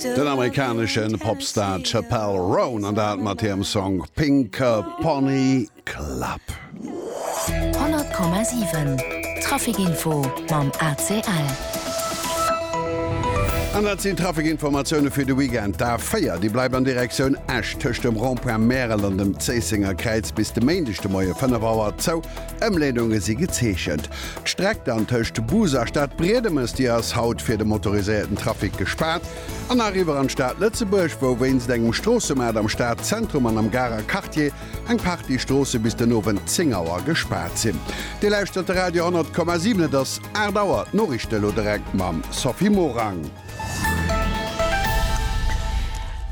Den amerikanesche Popstar Chappell Roan an dat mat hirem Song Pink Pony Club. 100,7 Traficinfo mam ACL. An dat sinn d'Traficinformatioune fir de Weekend. D'A4, déi bleift an Direktioun Esch tëscht dem Rond-point Märel an dem Zéissenger Kräiz bis de Méindeg de Moie 5 Auer zou. Ëmleedunge si gezeechent. D'Streck dann tëscht Bus a Stad Briedemes, déi ass haut fir de motoriséierten Trafic gespaart. An nach eriwwer an d'Stad Lëtzebuerg, wou wéinst engem Stroossemaart am Stadzentrum an am Garer Quartier eng Partie Stroosse bis den Owend 10 Auer gespaart sinn. Dir lauschtert de Radio 100,7. Et ass 8 Auer. D'Noriichte elo direkt mam Sophie Morang.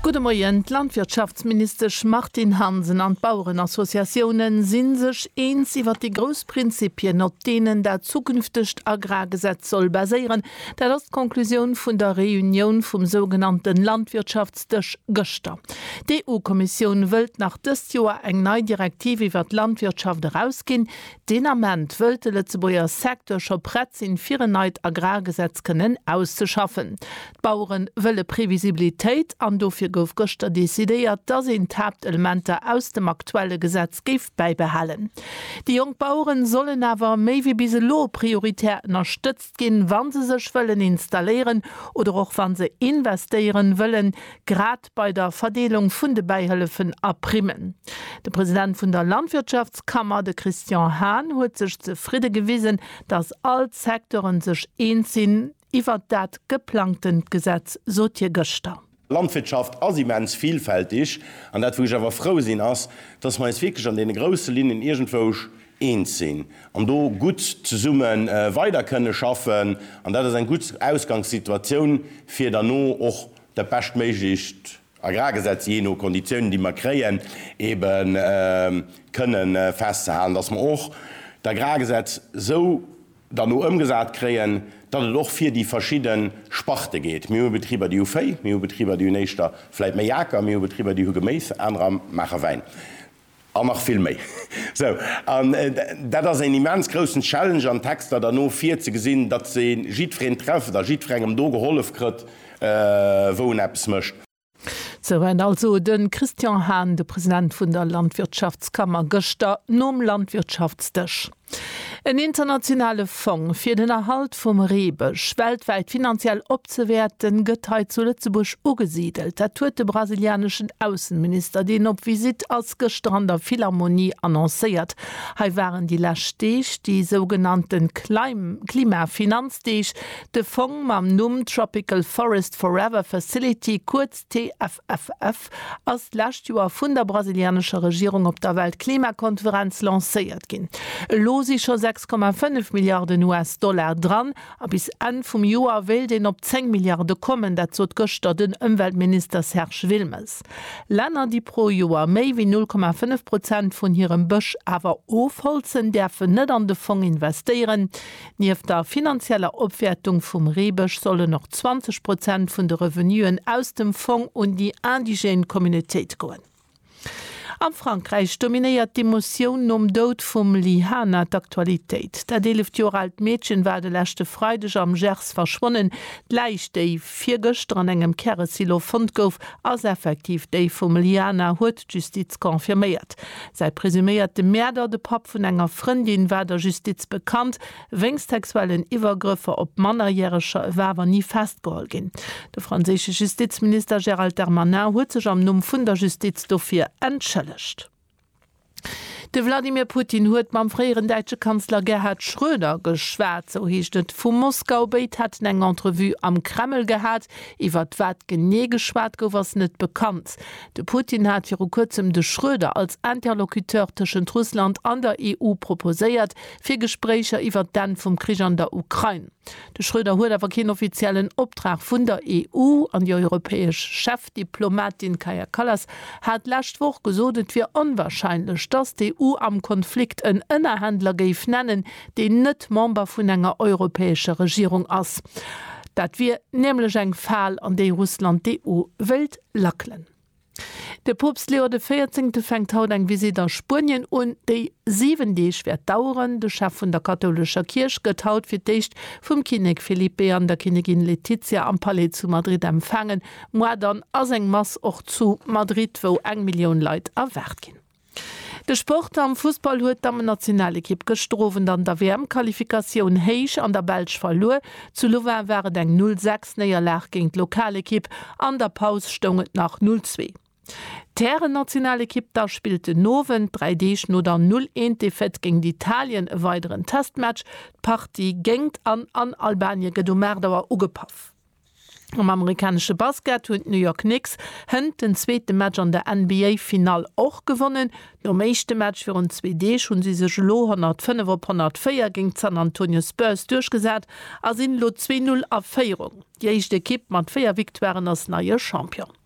Gudde Moien, D'Landwirtschaftsministesch Martine Hansen an d'Bauerenassociatioune si sech eens iwwer déi grouss Prinzippien, op deenen dat zukünftegt Agrargesetz soll baséieren. Dat ass d'Conclusioun vun der Reunioun vum sougenannte Landwirtschaftsdësch gëschter. D'EU-Kommissioun wëllt nach dëst Joer eng nei Direktiv iwwer d'Landwirtschaft erausginn, Deen Ament wëllt de Lëtzebuerger Secteur scho prett sinn, fir en neit Agrargesetz kënnen auszeschaffen. D'Bauere wëlle Previsibilitéit an dofir gouf gëschter decidéiert, dass een d'Haaptelementer aus dem aktuelle Gesetz géif bäibehalen. Déi jonk Bauere sollen awer méi wéi bis elo prioritär ënnerstëtzt ginn, wa se sech wëllen installéieren oder och wa se investéiere wëllen, grad, bei der Verdeelung vun de Bäihëllefen a Primmen. De President vun der Landwirtschaftskammer, de Christian Hahn, huet sech zefridde gewisen, datt all d'Secteuren sech eens sinn iwwert dat geplangtent Gesetz, sot hie gëschter. D'Landwirtschaft ass immens vilfältig, an dat wou ech awer frou sinn ass, datt mer eis wierklech an deene grousse Linnen iergendwousch eens sinn an do gutt zesumme weider kënne schaffen. An dat ass eng gutt Ausgangssituatioun fir derno och dat beschtméiglecht Agrargesetz, jee no Konditiounen, déi mer kréien, ebe kënne festzehalen, dass mer och d'Agrargesetz esou dann do ëmgesat kréien, datt et och fir déi verschidde Sparte geet. Mir hu Betriber, déi hu Véi, mir hu Betriber, déi hunn éischter vläicht méi Aker, mir hu Betriber, déi hu Geméis, anerer maache Wäin. An nach vill méi. Sou, an dat ass een immens groussen Challenge an Texter derno virzegesinn, datt een jiddwereen trefft a jiddwerengem do gehollef krëtt, wou en eppes mécht. Sou hat also de Christian Hahn, de President vun der Landwirtschaftskammer, gëschter nom Landwirtschaftsdësch, En internationale Fong fir den Erhalt vum Reebësch weltwäit finanziell opzewäerten, gëtt hei zu Lëtzebuerg ugesidelt. Dat huet de brasilianeschen Aussenminister, deen op Visitt ass, gëschter an der Philharmonie annoncéiert. Hei waren déi lescht Deeg déi sougenannte Klimafinanzdeeg. De Fong mam Numm Tropical Forest Forever Facility, kuerz TFF, FF, ass d'lescht Joer vun der brasilianescher Regierung op der Weltklimakonferenz lancéiert ginn. Elo si scho 6,5 Milliarden US-Dollar dran a bis Enn vum Joer wéilt een op 10 Milliarde kommen. Dat sot gëschter den Ëmweltminister Serge Wilmes. Länner, déi pro Joer méi wéi 0,5 Prozent vun hirem Bësch awer ofholzen, däerfen net an de Fong investéieren. Nieft der finanzieller Opwäertung vum Reebësch sollen och 20 Prozent vun de Revenuen aus dem Fong un déi indigène Communautéit goen. A Frankräich dominéiert d'Emotioun nom Doud vum Lyhana d'Aktualitéit. Dat eeleft Joer aalt Meedchen war de leschte Freideg am Gers verschwonnen. D'Läich, déi virgëschter an engem Käresilo fonnt gouf, ass effektiv déi vum Lyhana, huet. D'Justiz confirméiert, Säi presuméierte Mäerder, de Papp vun enger Frëndin, war der Justiz bekannt wéinst sexuellen Iwwergrëffer op Mannerjäreger. E war awer ni festgeholl ginn. De franséische Justizminister Gérald Darmanin huet sech am Numm vun der Justiz dofir entschëllegt. De Wladimir Putin huet mam fréieren däitsche Kanzler Gerhard Schröder geschwat, sou heescht et vu Moskau. Béid hätten eng Entrevue am Kreml gehat. Iwwert wat genee geschwat gouf, ass net bekannt. De Putin hat viru kuerzem de Schröder als Interlocuteur tëschent Russland an der EU proposéiert, fir Gespréicher iwwert d'Enn vum Krich an der Ukrain. De Schröder huet awer keen offiziellen Optrag vun der EU, an déi europäesch Chefdiplomatin Kaja Kallas hat d'lescht Woch gesot, et wier onwarscheinlech, datt d'EU am Konflikt en Ënnerhändler géif nennen, deen net Member vun enger europäescher Regierung ass. Dat wier nämlech eng Fal, an déi Russland d'EU wéilt Lackelen. De Poopst Leo de Véierzehnte fänkt haut eng Visitt a Spuenien un, déi 7 Deeg wäert daueren. De Chef vun der kathoulescher Kierch gëtt haut fir d'éischt vum Kinnek Felipe I an der Kinnegin Letizia am Palais zu Madrid empfaangen. Moar dann ass eng Mass och zu Madrid, wou eng Millioun Leit erwaart ginn. De Sport am Fussball huet d'Dammennationalekipp gëschter Owend an der WM-Qualifikatioun héich an der Belsch verluer. Zu Louvain war et eng 0 sechs Néierlag géint d'Lokalekipp, an der Paus stoung et nach 0 zwee. D'Härennationalekipp da spillt den Owend, dräi Deeg no der 0 eent Defaite géint Italien, e weideren Testmatch. D'Partie géingt an an Albanien gëtt um 8 Auer ugepaff. Am amerikanesche Basket hunn d'New York Knicks hënt den zweete Match an der NBA-Finall och gewonnen. Nom éischte Match virun zwee Deeg hu si sech elo 105 op 104 géint d'San Antonio Spurs duerchgesat a sinn elo 2-0 a Féierung. Déi éischt Ekipp mat véier Victoiren ass neie Champion.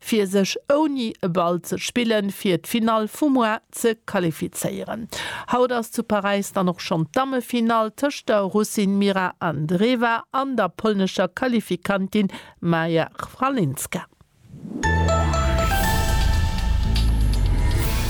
fir sech ouni e Ball ze spillen fir d'Finall vum Mois ze qualifizéieren. Haut ass zu Paräis dann och schonn d'Dammefinall tëscht der Russin Mira Andreeva an der polnescher Qualifikantin Maja Chwalinska.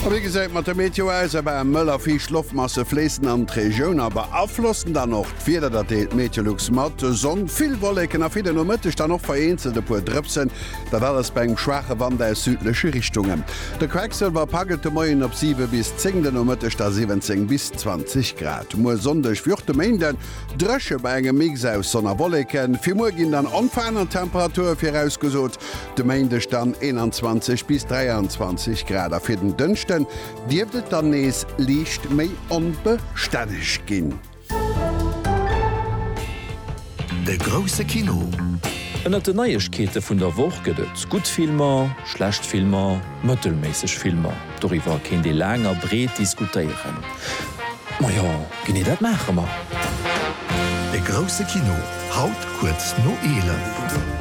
A wéi gesäit mat der Meteo aus? Awer mëll a fiicht Loftmasse fléissen an d'Regioun a beaflossen dann och d'Wieder. Dat deelt Meteolux mat, Sonn, vill Wolleken a fir de Nomëtteg dann och vereenzelt e puer Drëpsen. Dat alles bei engem schwaache Wand aus südleche Richtungen. De Quecksëlwer paggelt de Moien op 7 bis 10, de Nomëtteg da 17 bis 20 Grad. Muer Sonndeg wéi och de Méinde dréche bei engem Mix aus Sonn a Wolleken. Fir muer ginn dann onverännert Temperature virausgesot, de Méindeg dann 21 bis 23 Grad a fir den Dënschden dierft et dann nees liicht méi onbestänneg ginn. De grousse Kino. Ënnert den Neiegkeete vun der Woch gëtt et gutt Filmer, schlecht Filmer, mëttelméisseg Filmer. Doriwwer kéint ee laang a breet diskutéieren. Majo, genee dat maache mer! De grousse Kino. Haut kuerz no 11.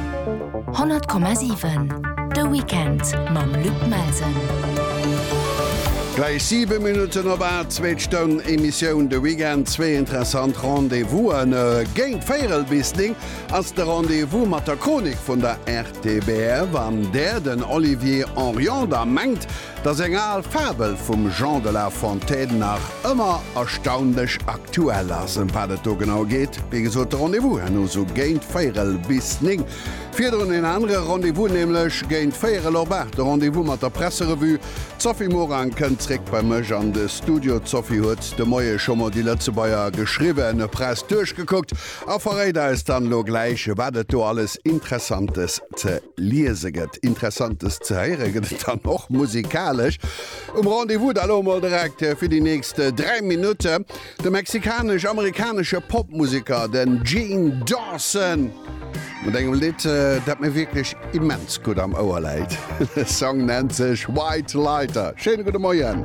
100,7 De Weekend mam Luc Melsen. Gläich 7 Minutten op 8, zweet Stonn Emissioun de Weekend, zwee interessant Rendez-vousen. Géint véierel bis 9 ass de Rendez-vous mat der Chronik vun der RTBF, an där den Olivier Orion da mengt, Dass eng al Fabel vum Jean de la Fontaine nach ëmmer erstaunlech aktuell ass. Ëm wat et do genau geet? Wéi gesot, de Rendez-vous herno sou géint véierel bis néng. Virdrun en anere Rendez-vous, nämlech géint véierel op aacht, de Rendez-vous mat der Presserevue. D'Sophie Morang kënnt zréck bei mech an de Studio. D'Sophie huet de Moie scho mol déi Lëtzebuerger geschriwwene Press duerchgekuckt a verréit eis dann elo gläich, wat et do alles Interessantes ze liese gëtt, Interessantes ze héiere gëtt et dann och musikalesch um Rendez-vous. Da elo emol direkt fir déi nächst 3 Minutte de mexikanesch-amerikanesche Popmuseker, den Gene Dawson, mat engem Lidd, dat mir wierklech immens gutt am Ouer läit. De Song nennt sech White Lighter. Schéine gudde Moien.